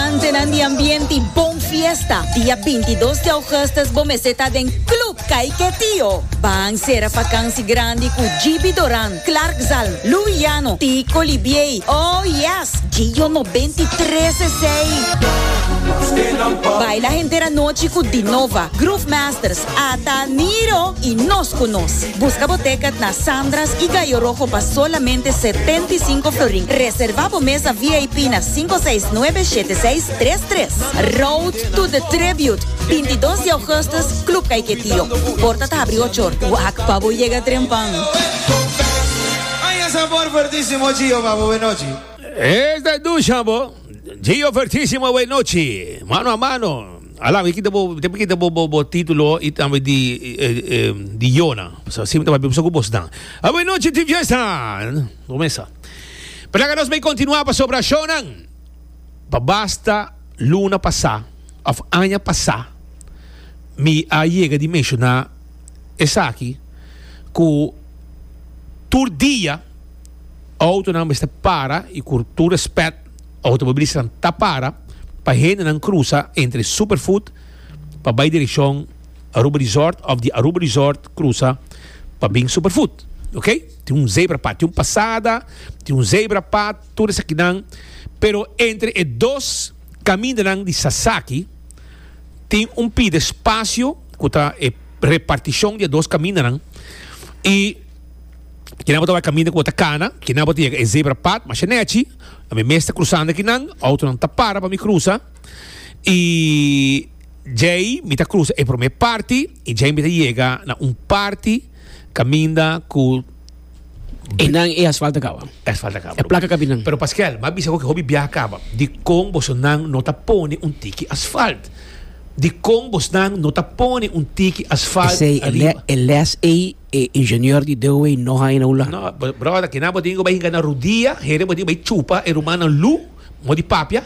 Amantenan di ambiente y bon fiesta. Dia binti dos di augustus bo mester ta den Club Kaiketio. Ban cera vakantie grandi cu Jibi Doran, Clark Zalm, Louis Llano, Tico Libiey, oh yes! Gio no benti tres esey. Baila henter anochi cu Dinova, Groove Masters, A ta Niro y nos cu nos. Busca bo tecket na Sandra's y Gallo Rojo pa solamente setenta y cinco florin. Reserva bo mesa VIP na cinco seis nuebe shete seis tres tres. Road to the Tribute, binti dos di augustus, Club Caiquetío. Porta ta habri ocho or. Wak pa bo yega trempan. Esta dusha bo. Gio Fertisimo Wenochi, Mano a Mano. Ala, mi kita bo, tem kita bo, bo, bo título y también di, eh, di Yona. So, si te papi, so ku bos dan. A buen noche, Team Fiesta! Promesa. Pelaga nos may continua pa sobra shownan. Pa basta luna pasa, of aña pasa, mi a yega di menciona esaki, ku tur dia autonan mester para y ku tur respet, Automobilisnan ta para pa hendenan krusa entre Superfood pa bai direkshon Aruba Resort òf di Aruba Resort krusa pa bin Superfood. Oke, tin un zebra pad, tin un pasada, tin un zebra pad, tur esakinan. Pero entre e dos kamindanan di Sasaki tin un pida spasio ku ta e repartishon di e dos kamindanan i kenabo ta bai kaminda ku bo ta kana, kenabo ta yega e zebra pad masha nèchi. A mi mes ta crusando aki nan, autonan ta para pa mi cruza y djei mi ta cruza e prome parti y djei mi ta yega na un parti caminda cu E nan e asfalt a caba. e asfalt a caba. E placa cabi nan. Pero Pascual, m'a bisa cu aki hopi biaha caba. Dicon bosonan no ta pone un tiki asfalt? Dicon bosnan no ta pone un tiki asfalt Esey e, le, arriba? e les ey E ingenieur di Dewey no haña na Hulanda. No, bròda, kinan bo tin ku bai hinka na rudia, hende bo tin ku bai chupa e rumannan lu, modo di papia,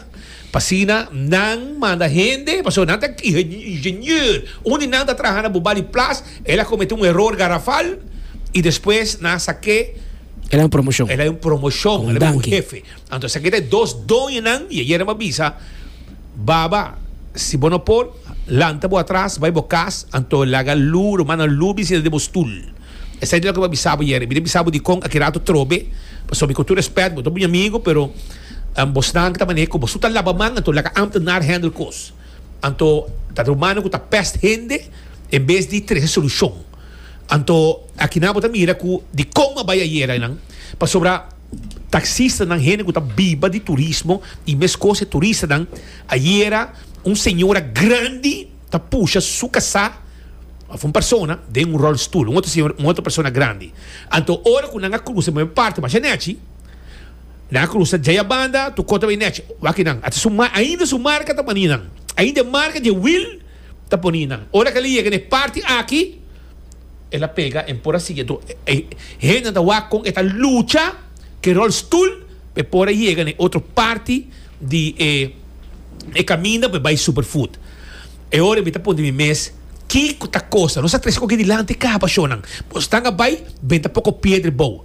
pa asina nan manda hende, pasobra nan ta ingenieur. Un di nan ta traha na Bubali Plaas, el a kometí un eror garafal i despues nan a sak'é, El a un promoshon. el a un promoshon, el a bin un hefe. Anto esaki ta e dos doñonan i e yerba bisa Baba, si bo no por, lanta bo atras, bai bo kas, anto laga lu, lo mana lu bisita den bo stul. Esei ta loke mi a bisa bo yere. Mi ta bisa bo dikon aki ratu trobe, pasobra ku tur rèspèt, bo ta mi amigu, pero bosnan ta manera ku boso ta laba man, anto laga amp ta nar hèndel kos. Anto ta rumano ku ta pèst hende en bes di trese solushon. Anto aki nan bo ta mira ku dikon mi a bai ayera nan, pasobra. Taxista nan hende cu ta biba di turismo y mes cos e turista nan ayera un señora grandi ta pusha su casa of un persona den un rol stool un otro señor un otro persona grandi anto ora cu nan a crusa moe parti masha nechi nan a crusa djaya banda tu cota bay nechi waki nan ata su marca ainda su marca ta bania nan ainda e marca dje wiel ta bania nan ora cu ala yega ne parti aki. El a pega en por a sigui edu e hende ta wak kon e ta lucha ke rol stul pa e por a yega na e otro parti di e e kaminda pa e bai super food. E ora mi ta punti mi mes, Kiko ta kosa nos a trese koke dilanti ka pashonan? Bo stan a bai ben ta poko piedra e bou.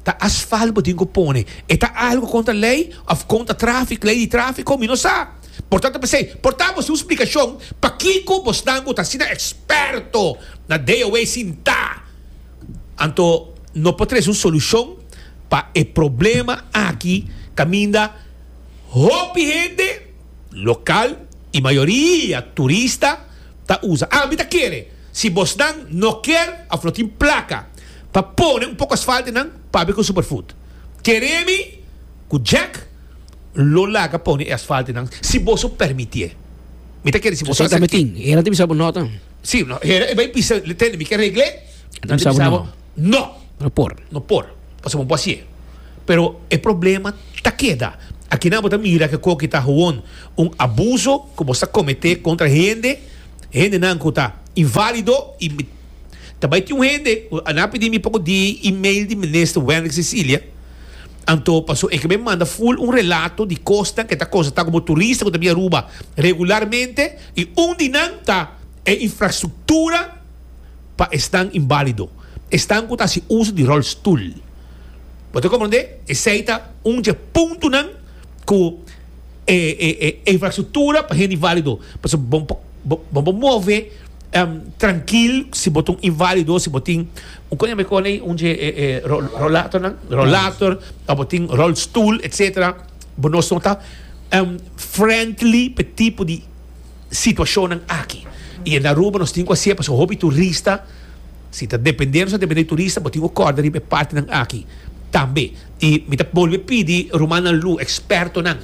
Ta asfalt bo tin ku pone. E ta algo kontra lei of kontra trafik, lei di trafiko? Mi no sa. Por tanto p'esei, por ta boso un splikashon pakiko bosnan ku ta asina eksperto na DOW sin ta, anto no por trese un solushon pa e problema aki kaminda hopi hende lokal i mayoria turista ta usa. Ah, mi ta kere si bosnan no ker òf no tin plaka pa pone un poko asfalto nan pabia ku superfood. Keremi ku Jack. lo laga pone e asfaltonan si boso permitié. Mi ta kere si boso hasi aki. E hera ta bisa bo no ta. Si, no. E hera e bai bisa, tende mi ke regl'é, nan ta bisa bo no. No por. No por, pasobra bo no por hasié. Pero e problema ta keda. Akinan bo ta mira ke koki ta howon un abuso ku bo sa kometé kontra hende, hendenan ku ta invalido i mi ta bai tin un hende ku a na pidi mi poko di e email di Minister Wendy Cecilia, Anto, pasobra e kebe manda ful un relato di kosnan ke ta konsatá komo turista ku ta bini Aruba regularmente, i un di nan ta e infrastruktura pa esnan inbálido, esnan ku ta hasi uso di ròlstul. Bo ta komprondé? Esei ta un dje puntunan. cu e infrastructura pa hende invalido. Pasobra bo bo bo bo move trankil si bo ta un invalido, si bo tin un cosa mihua na un dje e e rollator nan, rollator, of bo tin rolstoel etcetera, bo no so ta friendly pa e tipo di situacionnan aki. Y e na Aruba nos tin cu hacer pasobra hopi turista, si ta depende, nos ta depende di turista, bo tin cu corda riba e partenan aki tambe. I mi ta bolbe pidi rumannan Lu, ekspertonan,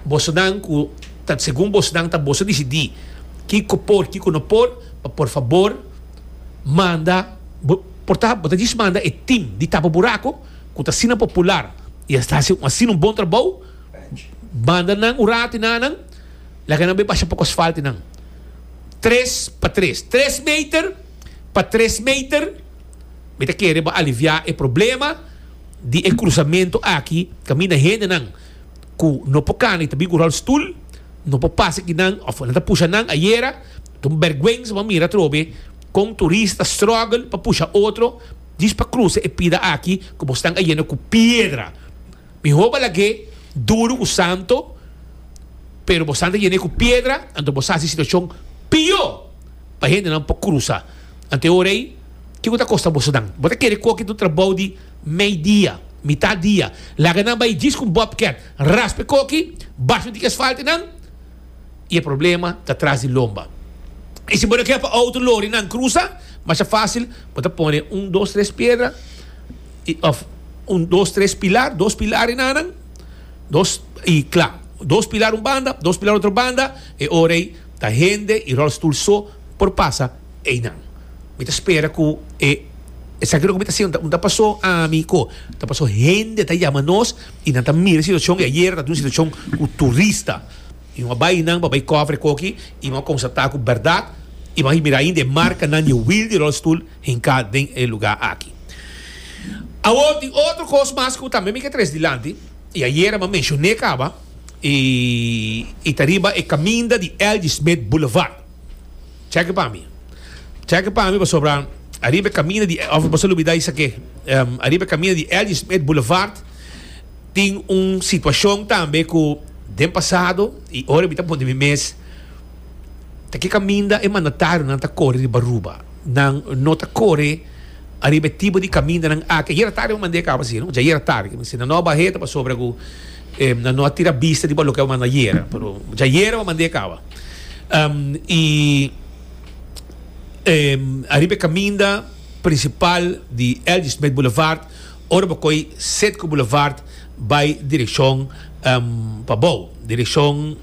bosonan ku ta segun bosonan ta boso disidí kiko por, kiko no por, pa por fabor manda, bo por ta, bo ta djis manda e tim di tapa burako ku ta asina popular i a ta hasi un asina un bon trabou, manda nan un rato i na nan laga nan bai basha poko asfalt i nan tres pa tres, tres meter pa tres meter. Mi ta kere bo aliviá e problema di e krusamentu aki kaminda hendenan ku no por kana i ta bin ku ròlstul, no por pasa ki nan òf nan ta pusha nan. Ayera ta un bèrgwensa pa mira atrobe kon turista strògel pa pusha otro djis pa krusa e pida aki ku bo stan ayena ku piedra. Mihor bo lag'é duru ku santo, pero bo santo yené ku piedra, anto bo sa hasi situashon pió pa hendenan por krusa. Anto e ora ei, kiko ta kosta boso nan? Bo ta kere koke tur trabou di meidia, mitá dia? Laga nan bai djis ku un bòbkèt, raspa e koki, bash'e un tiki asfaltenan? y e problema ta tras di lomba. Y si bo ta kere pa auto lori nan crusa, masha facil, bo ta pone un dos tres piedra y of un dos tres pilar, dos pilar y nanan, dos y cla, dos pilar un banda, dos pilar otro banda, e ora ey ta hende y rolstoel so por pasa eynan. Mi ta spera cu e esaki loke mi ta sinta, un ta paso ami, co, ta paso hende ta yama nos. Y nan ta mira e situacion di ayer, ta tin un situacion cu turista y bo a bay nan, bo a bay cofre coki y bo a constata cu berdad y bo a mira ainda e marcanan di e wiel di rolstoel hinca den e lugar aki. Awor tin otro cos mas cu tambe mi ke tres dilanti y ayer bo a mencione caba y ta riba e caminda di Elgie Smith Boulevard. Cheke pa mi. Cheke pa mi pasobra ariba e camina di of bo sa lubida esaki ariba e camina di L. G. Smith Boulevard tin un situacion tambe cu den pasado y ora mi ta puntra mi mes ta ki caminda e mandatarionan ta core riba Aruba? Nan no ta core ariba e tipo di camindanan aki. Ayer atarde bo manda e caba si no? Dja ayer atarde. Nan no a bahe ta pasobra cu. E nan no a tira bista riba loke bo a manda yera, pero dja yera bo a mand'é kaba. I ariba e kaminda prinsipal di L. G. Smith Boulevard, ora bo koi Citgo Boulevard bai direkshon pa bou, direkshon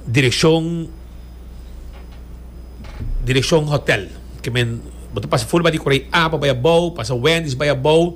direkshon direkshon hotel, ke men bo ta pasa for bai di Corei A pa bai abou, pasa Wendy's bai abou.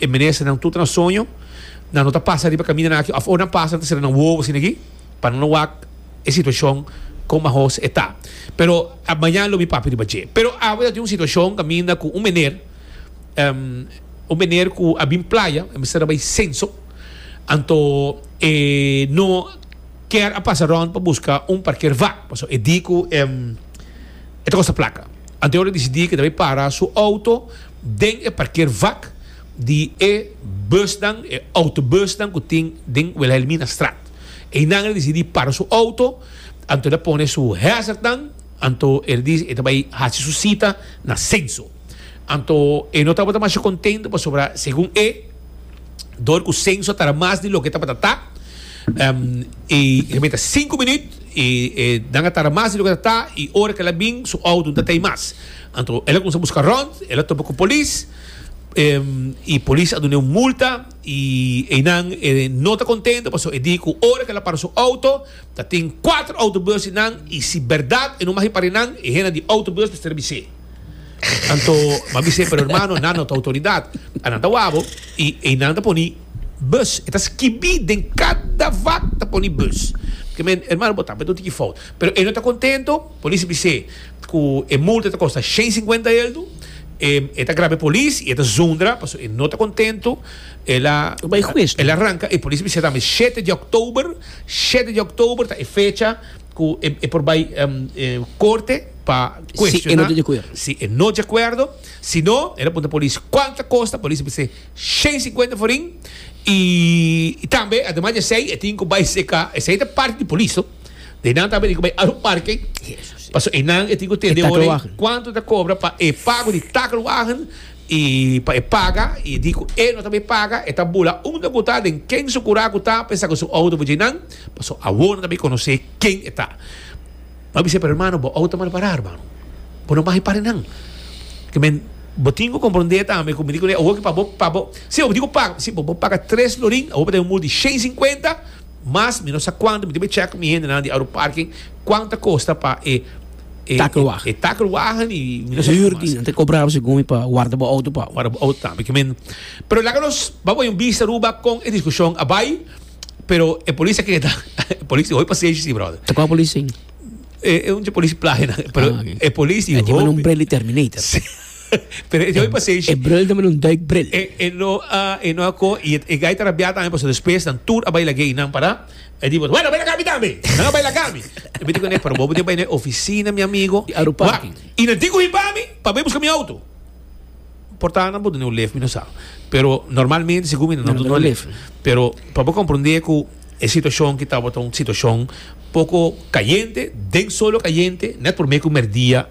E minister nan tur ta na soño, nan no ta pasa riba caminda nan aki of ora nan pasa nan ta cera nan wowo asina aki pa nan no wak e situacion con mahos e ta. Pero a mañan lo mi papia riba dje. Pero awe ta tin un situacion caminda cu un meneer, un meneer cu a bin playa, a mester a bay censo, anto e no kier a pasa rond pa busca un parkeer vak, pasobra e di cu e ta costa placa. Anto e ora e dicidi cu e ta bay para su auto. den e parkeervak di e busnan, e outobusnan ku tin den Wilhelminastraat. Einan e disidí para su outo, anto el a pone su hazardnan, anto e a dici e ta bai hasi su sita na senso. Anto e no tabata masha kontento pasobra segun e, dor ku senso a tara mas di loke e tabata ta, i rementa ta sinku minüt, i nan a tara mas di loke ta ta, i ora ku el a bin su outo no ta tei mas. Anto el a cuminsa busca rond, el a topa cu polis, y polis a dun'e un multa, y eynan e no ta contento pasobra e dije cu ora cu el a para su auto ta tin cuatro autobus eynan, y si berdad e no magi para eynan, e hende di autobus mester a bis'e. Anto bo a bis'e, pero hermano, nan no ta autoridad, a nan ta wabo, y eynan ta poni bus, e ta skibi den cada wak ta poni bus, kiemen hermano, bo ta papia tur tiki fout, pero e no ta contento. Polis bis'é ku e multa ta kosta shen sinkuenta eldu. E ta grab'é polis i e ta zundra pasobra e no ta kontentu. El a bai hues tu. El a ranka. E polis bis'é tambe shete di òktober. Shete di òktober ta e fecha ku e por bai korte pa kuestioná. Si e no ta di akuerdo. Si e no di akuerdo. Si no, el a punta polis kuantu ta kosta. Polis bis'é shen sinkuenta forin. I tambe ademas di esei e tin ku bai seká. Esei ta parti di polis. E nan ta bini ku bai aeroparke, paso e nan e tin ku tende ora ei kuantu ta kobra pa e pago di takelwagen i pa e paga i di ku e no ta bai paga e ta bula un ta guta den ken su kura ku ta pensa ku su outo por dje nan paso awor nan ta bai konosé ken e ta. Bo a bisa pero hermano bo outo ta repará hermano bo no baha e para di nan ke men bo tin ku komprondé tambe ku mi di ku awor ke pa bo pa bo si bo tin ku paga si bo bo paga tres florin awor bo ta den un mul di shei i sinkuenta Mas mi no sa cuanto mi tin be check cu mi hendenan di Aeroparking cuan ta costa pa e e tackle wagen y mi no sa cuanto mas. Te cobraba segun mi pa warda bo auto pa. Warda bo auto tambe ki men. Pero laga nos ba bay un bista Aruba con e discusion a bay pero e police a keda e police di hopi pasenshi si brother. Ta cua police sin? E un dje police playanan pero e police di hopi. Adi man un breli terminator. Pero e hoy pasei. E brul de un duik brul. E, e no a, uh, e no a ko i e gai tara biata ampo so despues dan tur a baila gei nan para. E di bueno, baila kami tambe. Nan a baila kami. E beti kone pero bobo de baila oficina mi amigo. Di aru parking. I nan tiko hi pami pa bai buska mi auto. Porta nan bodo no lef mi no sa. Pero normalmente segun mi nan no lef. Pero pa bo comprende ku e situacion ki tabata un situacion poko cayente den solo cayente net por me ku merdia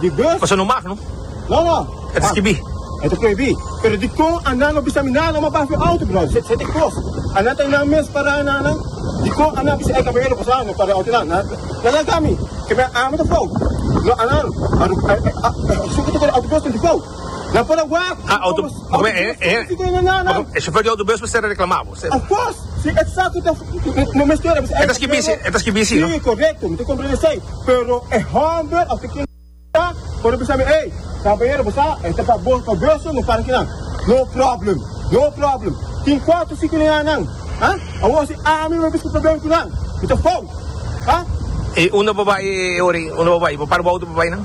Di bus. Paso no mag no. No no. E ta skibi. E ta prohibi. Pero dikon anan no bisa mi nan lo maba afe auto brother. Sete sete kos. Anan ta nan mes para nan anan. Dikon anan bisa ey cabalero pasado no para auto nan. Nan laga mi. Ke mi amo ta fout. No anan. Su ke ta kore auto bus tin defout. Nan por a wak. Auto bus. Nan nan nan nan. E chofer di auto bus mester a reclama bo. Of course, si e sa ku ta no mester a bisa e ta skipi si, e ta skipi si no. Si, korekto, mi ta komprende esei, pero e hòmber òf e kende ku ta por a bisa mi, ey, kompañero bo sa e ta pa bo, pa Brussel no para kinan. No problem, no problem, tin kuater siti na ya nan, ha? Awor si ami mi a biske problem ku nan, mi ta fout, ha? Ey, unda bo bai e ora ei? Unda bo bai? Bo para bou di bo bai nan?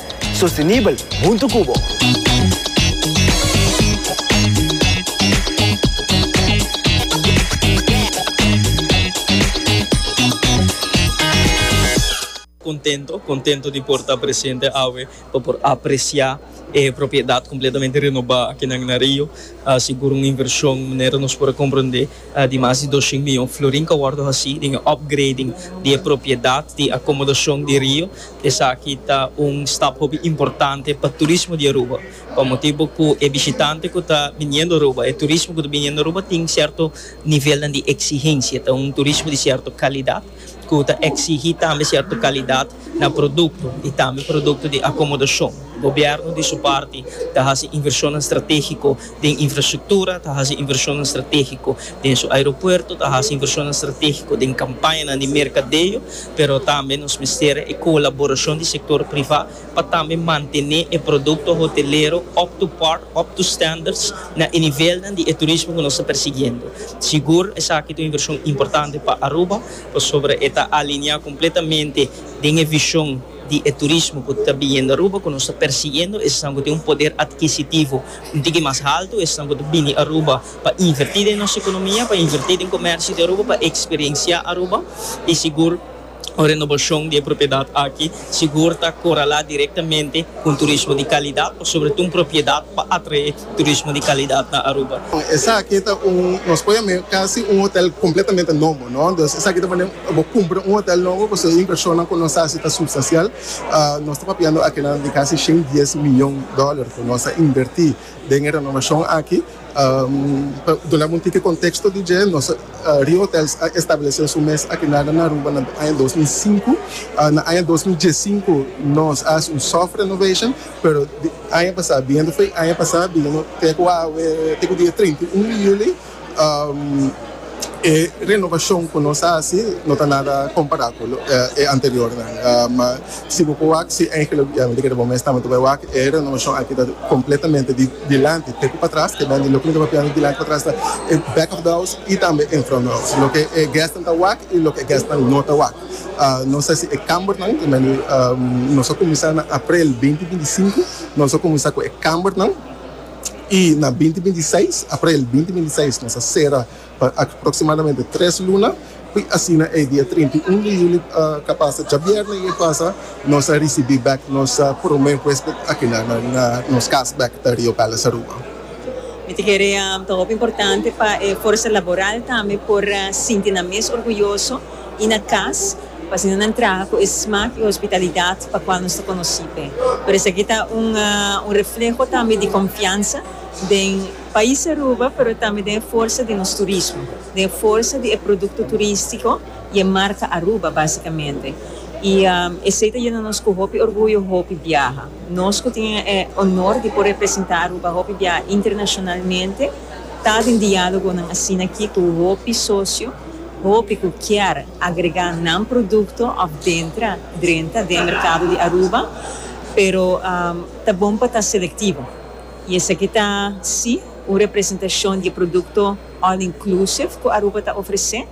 Sostenibel hunto cu bo. Contento, contento di por ta presente awe pa por aprecia e propiedad completamente renoba aki na Rio. Sigur un inversion manera nos por a comprende di mas di doscient miljon florin ca wordo haci den e upgrading di e propiedad di acomodacion di Rio. Esaki ta un stap hopi importante pa turismo di Aruba pa motibu ku e bishitante ku ta biniendo Aruba, e turismo ku ta biniendo Aruba tin sierto nivelnan di eksihensia. Ta un turismo di sierto kalidat ku ta eksigí tambe sierto kalidat na produkto i tambe produkto di akomodashon. Gobièrnu di su parti ta hasi invershonnan stratégiko den infrastruktura, ta hasi invershonnan stratégiko den su aeropuerto, ta hasi invershonnan stratégiko den kampañanan di merkadeo, pero tambe nos mester e kolaborashon di sektor privá pa tambe mantené e produkto hotelero up to par, up to standards, na e nivelnan di e turismo ku nos ta persigiendo. Sigur esaki ta un invershon importante pa Aruba, pasobra e ta alineá kompletamente den e vishon di e turismo ku ta biniendo Aruba, ku nos ta persigiendo esasan ku tin un poder adkisitivo. Un tiki mas haltu esnan ku ta bini Aruba pa invertí den nos ekonomia, pa invertí den komèrsio di Aruba, pa eksperensiá Aruba. I sigur un renobashon di e propiedat aki sigur ta koralá direktamente ku un turismo di kalidat o sobretou un propiedat pa atraé turismo di kalidat na Aruba. Esaki ta un, nos por yam'é kasi un hotèl kompletamente nobo, no? Entonces esaki ta pone bo kumpra un hotèl nobo pasobra e invershonnan ku nos hasi ta supstansial. Nos ta papiando aki nan di kasi shen dies miyon doler ku nos a inverti den e renobashon aki. Pa dunabo un tiki konteksto di dje, nos Rio Hotels a establesé su mes aki nan na Aruba na aña dos mil sinku. Na aña dos mil diesinku nos a hasi un soft renovation, pero di aña pasá biendo fei aña pasá bini te ku awe te ku dia treinta i un di yuli. E renovashon ku nos a hasi no ta nada kompará ku e anteriornan. Ma si bo por wak, si Angel a guia mi te keda bo mes tambe ta bai wak, e renovashon aki ta kompletamente di dilanti te ku patras, te bende loke mi ta bai piensa di dilanti ku patras ta e back of the house i tambe in front of the house, loke e guestnan ta wak i loke e guestnan no ta wak. Nos a hasi e kambernan, ta bende nos a kuminsá na aprel binti binti sinku, nos a kuminsá ku e kambernan. i na binti binti seis, aprel, binti binti seis nos a sera pa aproximadamente tres luna, pui asina e dia trinta i un di yuli ta pasa djabièrnè i e pasa nos a risibí bèk nos promé huésped akinan na na nos kas bèk ta Rio Palace Aruba. Mi ta kere ta hopi importante pa e forsa laboral tambe por sinti nan mes orguyoso. i na cas pa asina nan traha cu e smaak i hospitalidad pa cual nos ta conoci p'e. Pero esaki ta un un refleho tambe di confiansa den pais Aruba pero tambe den e forsa di nos turismo, den e forsa di e producto turistico i e marca Aruba basicamente. I esey ta yena nos cu hopi orguyo, hopi biaha. Nos cu tin e honor di por representa Aruba hopi biaha internacionalmente ta den dialogonan asina aki cu hopi socio. Hopi cu kier agrega nan producto of dentra, drenta, den mercado di Aruba, pero ta bon pa ta selectivo. Y esaki ta, si, un representacion di e producto all-inclusive cu Aruba ta ofrece,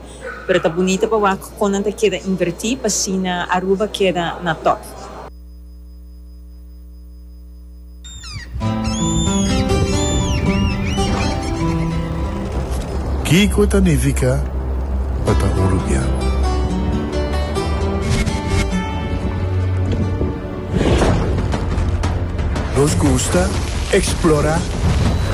pero ta bunita pa wak con nan ta keda inverti pa asina Aruba keda na top. Kiko ta nifica pa ta un rubian? Nos gusta explora.